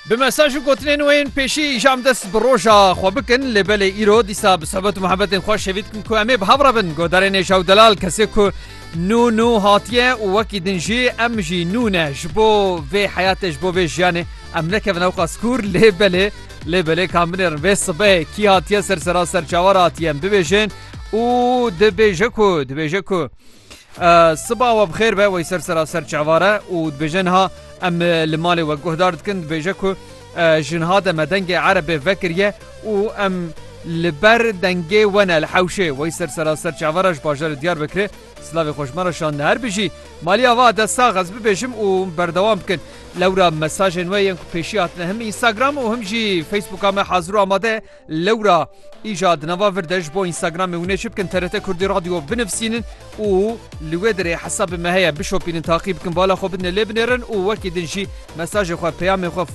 Bi mesaj û gotinên wê yên pêşî îjam dest bi roja xwe bikin lê belê îro dîsa bi sohbet û muhebetên xwe şêvî dikim ku em ê bi hev re bin. Godarê Nêja û Delal kesê ku nû nû hatiye û wekî din jî em jî nû ne ji bo vê heyatê ji bo vê jiyanê em nekevin ewqa sikûr lê belê lê belê kam binêrin vê sibehê kî hatiye ser sera serçawa re hatiye em bibêjin û dibêje ku dibêje ku Siba we bixêr be wey ser sera ser çavare û dibêje niha em li malê we guhdar dikin dibêje ku jinha de me dengê erebê vekiriye û em li ber dengê we ne li hewşê wey ser sera ser çavara ji bajarê diyar bikirê silavê xweşmara şande her bijî maliya va de sax ez bibêjim û berdewam bikin lewra mesajên we yên ku pêşî hatine him Instagram û him jî Facebooka me hazir û amade Lewra îja di nava vir de ji bo Instagramê hûn ê çi bikin TRT Kurdî Radio binivîsînin û li wê derê hesabê me heye bişopînin taqî bikin bala xwe bidine lê binêrin û wekî din jî mesajê xwe peyamê xwe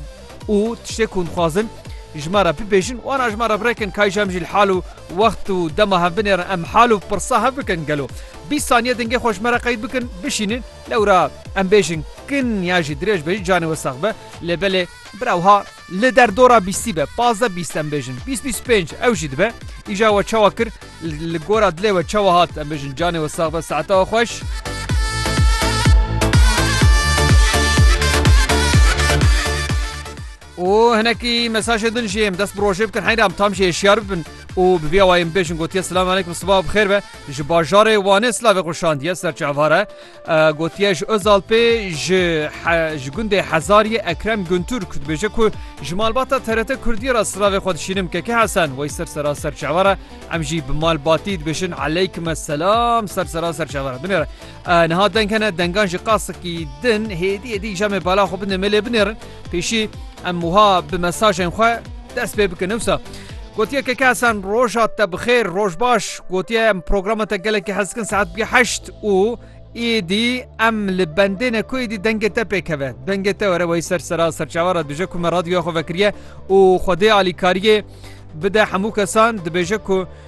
û tiştê ku hûn dixwazin ji me re bibêjin wana ji me re birêkin kay ji em jî li hal û wext û dema hev binêrin em hal û pirsa hev bikin gelo bîst saniye dingê xwe ji me re qeyd bikin bişînin lewra em bêjin kin ya jî dirêj be jî canê we sax be lê belê bira wiha Li derdora bîstî be, pazdeh bîst em bêjin, bîst bîst û pênc ew jî dibe. Îja we çawa kir, li gora dilê we çawa hat, em bêjin canê we sax be, saeta we xweş. û hinekî mesajê din jiyêm dest bi rojê bikin heyram tam jê hişyar bibin û bi vîya wayên bêjin gotiye silam aleykum siba bixêr be ji bajarê wanê silavê xweşandiye serçavare Gotiye ji Ozal pê ji ji gundê Hezariyê Ekrem Guntürk dibêje ku ji malbata TRT Kurdiyê re silavê xwe dişînim keke Hesen wey ser sera ser çawa re em jî bi malbatî dibêjin eleykime selam ser sera ser çawa re binêre. Niha deng hene dengan jî qasikî din hêdî hêdî îja me bala xwe binde me lê binêrin. Pêşî em wiha bi mesajên xwe dest pê bikin ewsa. Gotiye ke kesan roja te bixêr roj baş gotiye em programa te gelekî hez dikin saet bî heşt û êdî em li bendêne ku êdî dengê te pêkeve dengê te were wey ser sera serçavara dije ku me radyoya xwe vekiriye û xwedê alîkariyê bide hemû kesan dibêje ku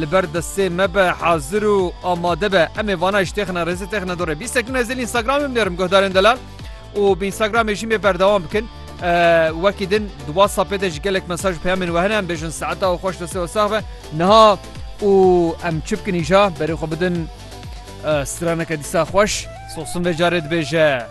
Li ber destê me be, hazir û amade be. Em ê vana îştêxine rêzê têxine dorê. Bîst sekîne ez ê li Instagramê binêrim guhdarên delal û bi Instagramê jî mê berdewam bikin. Wekî din di WhatsAppê de ji gelek mesaj û peyamên we hene em bêjin saeta û xweş destê we sax be. Niha û em çi bikin îja berê xwe bidin straneke dîsa xweş. Sosim vê carê dibêje.